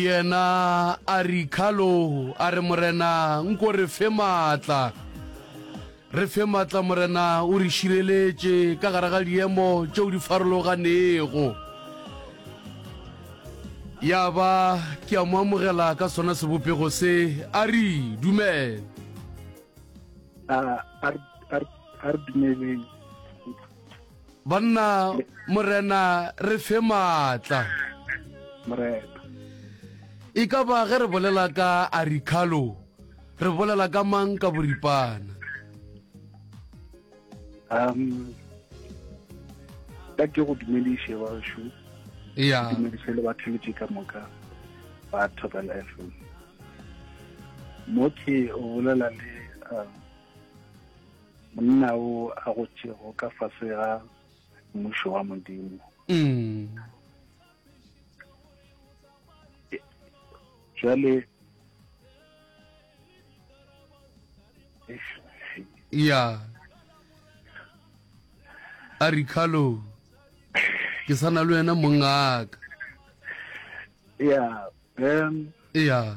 Yena a re, Carlo, a re, Morena, nko re fe maatla. Re fe maatla, Morena, o re šireletše ka gare ga diemo tšeo di farologanego. Ya ba ke a mo amogela ka sona sebopego se, a re, Dumela. A, a re, a re, a re dumeleng. banna morena re fe maatla morena e ka ba ge re bolela ka aricalo re bolela ka mang ka boripana um ka ke go dumediše bašo ya dumediše le batheletše ka moka ba tobel f m mo ke o bolela le um Monna o a gotšego ka fase ga mmušo wa Modimo. Mm. Jwale ya a re khalo ke sana le wena mongaka ya um ya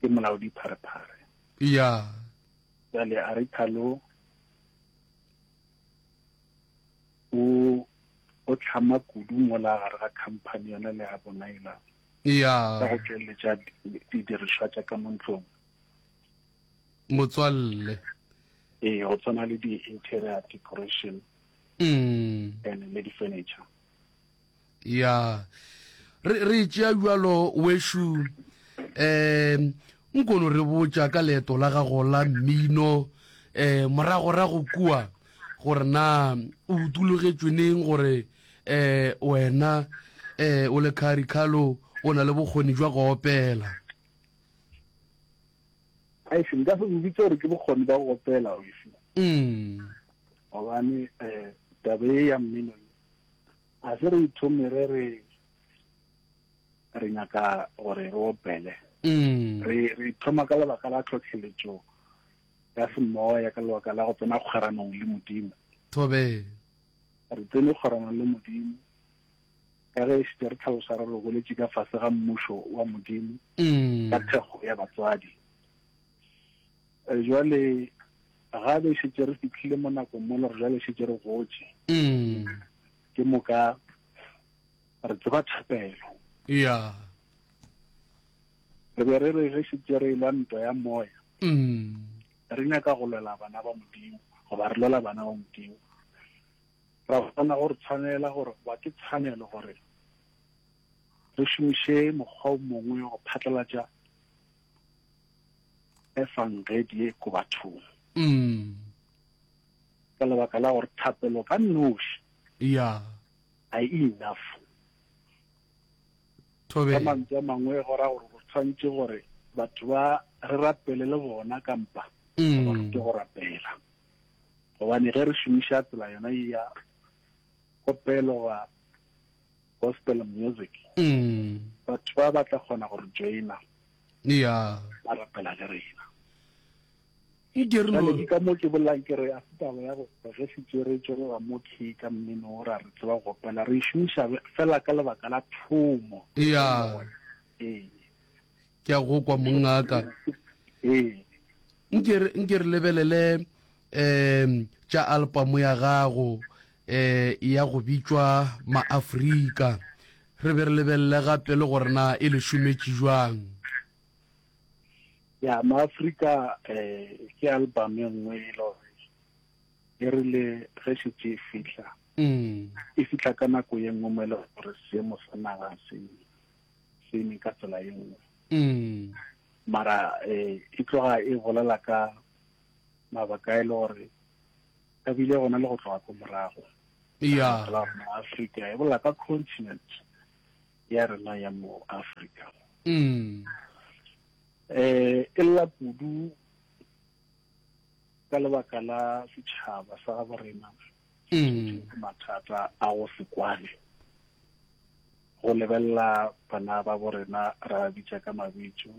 Ke molaodi Pharephare. Eya. Jale a re Thalo o o tlhama kudu mola gare ga company yona le ya bona ela Eya. ka go tšweletša di- didirišwa tša ka mo ntlong. Motswalle. Ee, go tshwana le di-interior decoration Mm. and le di-furniture. ya re re tšea bjalo wešo um nkono re botša ka leeto la gago la mmino um moragorago kua gore na o utologetšwe neng gore um wena um o le khari khalo o na le bokgoni jwa go opela aise nka se go bitse gore ke bokgoni ba go opela oise mm. gobane um tabe e ya mmino A se re ithomire re re nyaka gore re opele. Mm. Re re ithoma ka lebaka la tlhotlheletšo ya semoya ka lebaka la go tsena kgweranong le Modimo. Thobe. Re tsene kgweranong le Modimo ka ge e šite re tlhalosa re re goletše ka fase ga mmušo wa Modimo Mm. ka thekgo ya batswadi. Jwale ga be šetše re fitlhile mo nakong mo le gore jwale šetše re gotše mm. ke moka re tseba thapelo ya re be re re ge šetše re lwa ntwa ya moya mm. re nyaka go lwela bana ba modimo goba re lwela bana ba modimo ra bona gore tshwanela gore ba ke tshwanelo gore re šomiše mokgwa o mongwe go phatlalatša efangedi ko bathong mm. ka lebaka la gore thapelo ka noši yeah. ga e enough ka mantswe a mangwe go ra gore go tshwanetse gore batho ba re rapele le bona kampa mm. gore ke go rapela gobane ge re šomiša tsela yona ya kopelo wa gospel music batho ba ba tla kgona go re joina ya ba rapela le rena e dirlo ke ka mo ke bolang ke re a sitaba ya go re se tsere tsere ga mo ke ka mmino o ra re tseba go pela re shumisha fela ka lebaka la thomo ya ee ke a go kwa mongaka nke re nke re lebelele um tša album ya gago um ya go bitšwa maafrika re be re lebelele gape le gore na e le šometše jwang ya maafrika um ke album e nngwe e le gore e rile ge šetse e fitlha mm. e fitlha ka nako ye nngwe mo e le gore seemo sa naga se sene ka tsela ye nngwe mm. mara eh, e tloga e bolela ka mabaka e le gore ka bile gona le go tloga ko morago ya africa e bolela ka continent ya rena ya mo africa mm. eh e lla kudu ka lebaka la setšhaba sa gabo rena mathata a go se kwane go lebelela bana ba bo rena ra ba bitša ka mabitso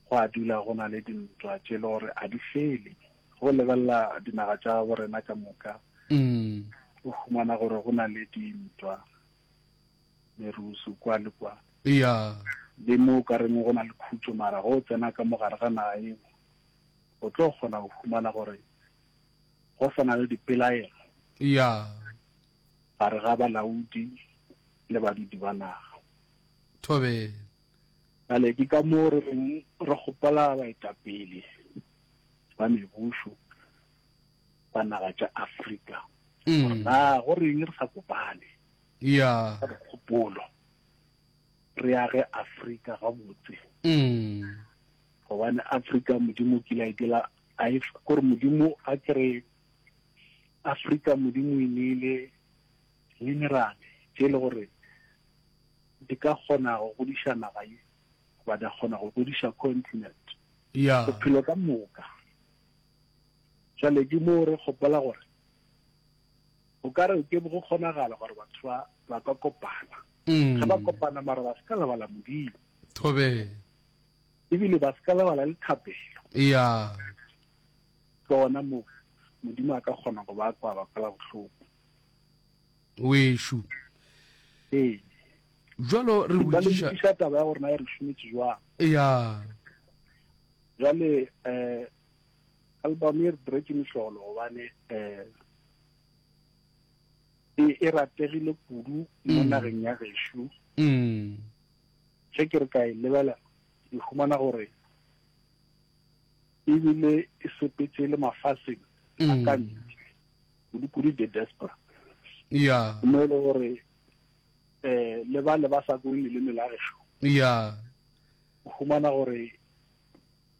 go a dula go na le dintwa tše le gore a di fele go lebelela dinaga tša bo rena ka moka o humana gore go na le dintwa merusu kwa le kwa le mo ka reng go na le khutso mara go tsena ka mogare ga naga eo o tlo kgona go humana gore go sa na le dipelaelo ya gare ga balaodi le badudi ba naga. Thobela. Bjale ke ka moo re reng re kgopela baetapele ba mebušo ba naga tša Afrika gore mm. na go reng re sa kopane ya kgopolo re age Afrika gabotse mm. gobane Afrika modimo kile a itela A if gore Modimo a kere Afrika Modimo e ne le mineral tše le gore di ka kgona go godiša naga ye ba da kgona go godiša continent yeah. bophelo ka moka jale di mo re gopola gore o ka re ke go kgonagala gore batho ba ba ka kopana mm. ga ba kopana mara ba se ka lebala modimo thobela Ebile ba se ka lebala le thapelo. Eya. Ke gona moo Modimo a ka kgona go ba kwaba kwela bohloko. Wešo. Ee. Jwalo re Ba le botšiša. lokiša taba ya gore na e re šometše jwang. Eya. Jwale eh album e re diretse mehlolo gobane eh e e rategile kudu mo Mm. nageng ya gešo. Mm. Ge ke re ka e lebelela, ke humana gore e bile e sepetše le mafaseng a ka ntle, kudu-kudu diaspora, mo e le gore um le bale ba sa bue leleme la gešo, o humana gore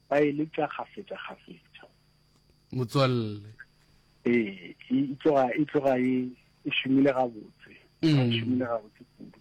ba e letša kgafetša-kgafetša. Motswalle. Ee, e tloga e tloga e e šomile gabotse, e šomile gabotse kudu.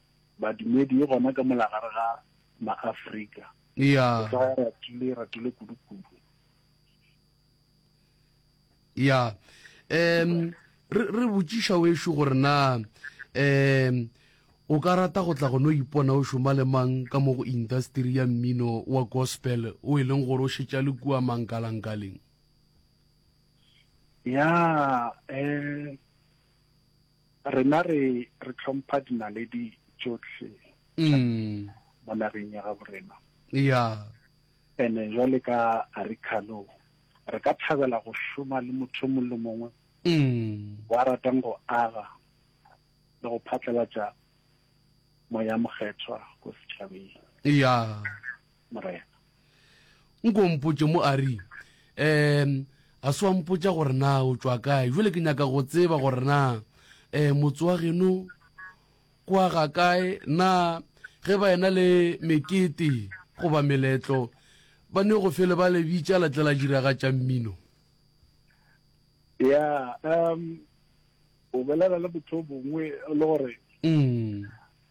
badumedi e gona ka mola gare ga maafrika ya ratile ratile kudu-kudu ya um re re botšiša wešo gore na um o ka rata go tla go no ipona o šoma le mang ka mo go industry ya mmino wa gospel o e leng gore o šetša le kua mankalankaleng ya um Rena re re tlhompha dinaledi tšohle tša mo nageng ya gabo rena. Ya. Ene jwale ka Arikalo re ka thabela go šoma le motho mong le mongwe wa ratang go aga le go phatlalatša Moya Mokgethwa ko setšhabeng. Ya. Morena. Nko mpotše mo a ri, um a se wa mpotša gore na o tšwa kae, jale ke nyaka go tseba gore na um motse wa geno kwa ga kae, na ge ba ena le mekete goba meletlo ba ne go fele ba le bitša la tla la diragatša mmino? Ya, um o bolela le motho o mongwe le gore mm.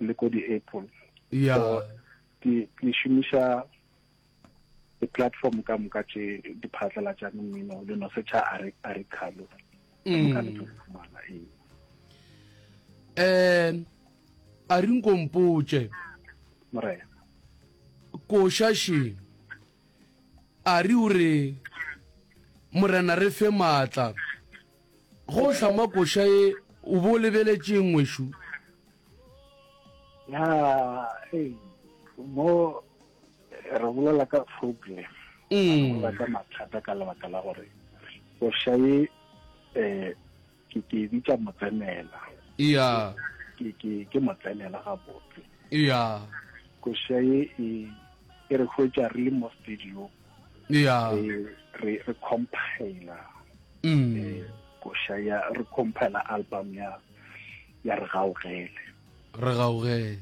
le ko di-apple ya ke šomiša di-platform ka moka tše di phatlalatšang mmino le no setšha a re khalo mm. ka le fumana ee um a re nkompotše morena košašeng a re o re morena re fe maatla Go hlama koša ye o bo lebeletšeng ngwešu? Ya, hey, mo re bolela ka problem. Mm. Re ka mathata ka lebaka la gore koša ye eh ke ke e bitša motsenela. Ya. Ke ke ke motsenela ga botse. Ya. Koša ye e e re hwetša re le mo stadium. yeah. Eh, re re compile mm. eh, kosha ya re compile album ya ya re gaogele re gaogele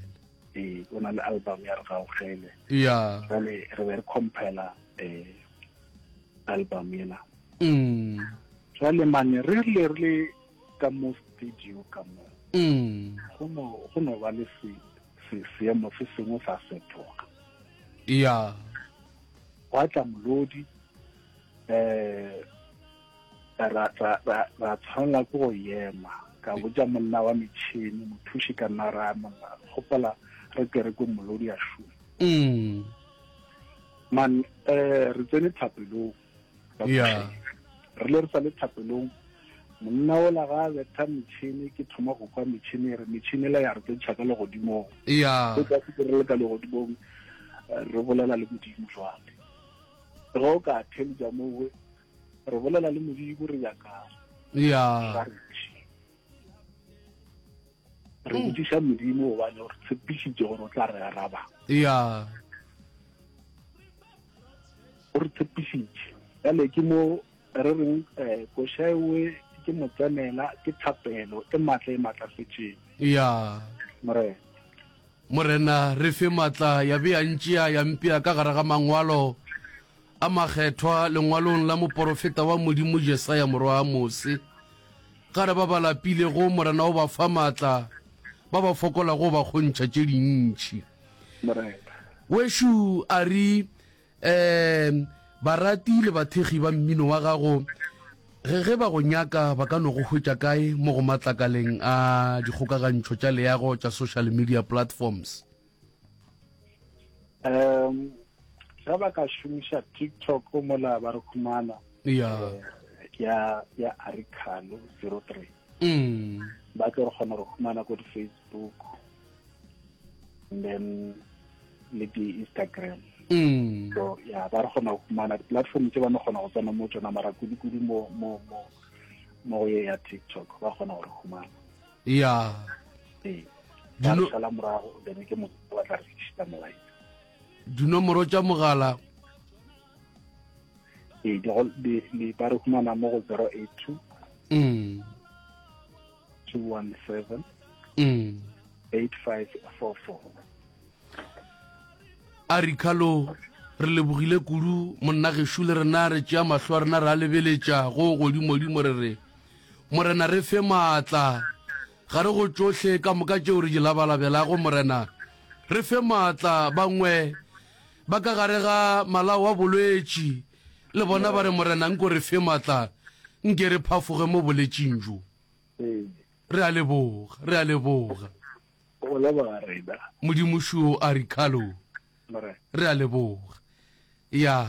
eh o na le album ya re gaogele yeah jale re be re compile eh album ena mm jale mane re le re ka mo studio ka mo mm go no go no ba le se Se, seemo se sengwe sa fetoga. Eya. Gwa tla molodi, eh, ra, ra, ra, ra tshwanela ke go yema. Ka botša monna wa metšhini, mothuši ka nna ra monna, gopola re kerekong molodi a šuma. Mm. Man, eh, re tsene thapelong. yeah re le re sa le thapelong monna ola ga a betha metšhini ke thoma go kwa metšhini e re metšhini la ya re tsentšha ka legodimong yeah o ka se re le ka legodimong eh, re bolela le modimo jwale ge o ka theletša mowe re bolela le modimo re nyakang yeah re mm. botsiša modimo gobane gore tshepišitše gore o tla re araba ya o re tshepišitše jale ke mo re reng um eh, košaewe ke motsenela ke thapelo e maatla e maatlafetseng ya morena morena re fe maatla ya be ya ntšea ya mpea ka gare ga mangwalo a makgethwa lengwalong la moporofeta wa modimo jesaya morwa a mose Gare ba ba lapilego, Morena o ba fa maatla, ba ba fokolago o ba kgontšha tše dintšhi. Morena. Wešo a re, um Barati le bathekgi ba mmino wa gago, ge ge ba go nyaka ba ka no go hwetša kae mo go matlakaleng a dikgokagantšho tša leago tša social media platforms? um ga ba ka šomiša tiktok mola ba re humana ya ya ya arikalo zero three mm. ba tlo re kgona go humana ko di-facebook and then le di-instagram mm. so ya ba re kgona go humana di-platform tse ba ne kgona go tsena mo tsona mara kudu-kudu mo mo mo mo go ye ya tiktok ba kgona go re humana ya sala morago then ke mo wa tla re šita molaetsa dinomoro tša mogala ee di ba re humana mo go 082 mm 217 mm 8544 a re khalo re lebogile kudu monna gešo le rena re tšea mahlo a rena re a lebeletša go godimodimo re re Morena, re fe maatla. Gare go tšohle ka moka tšeo re di labalabelago, Morena, re fe maatla. Bangwe ba ka gare ga malao a bolwetši, le bona ba re, Morena, nko re fe maatla, nke re phafoge mo boletšing bjo. Re a leboga, re a leboga. O leboga, Rena. Modimo, šo a Ricardo, re a leboga. Ya.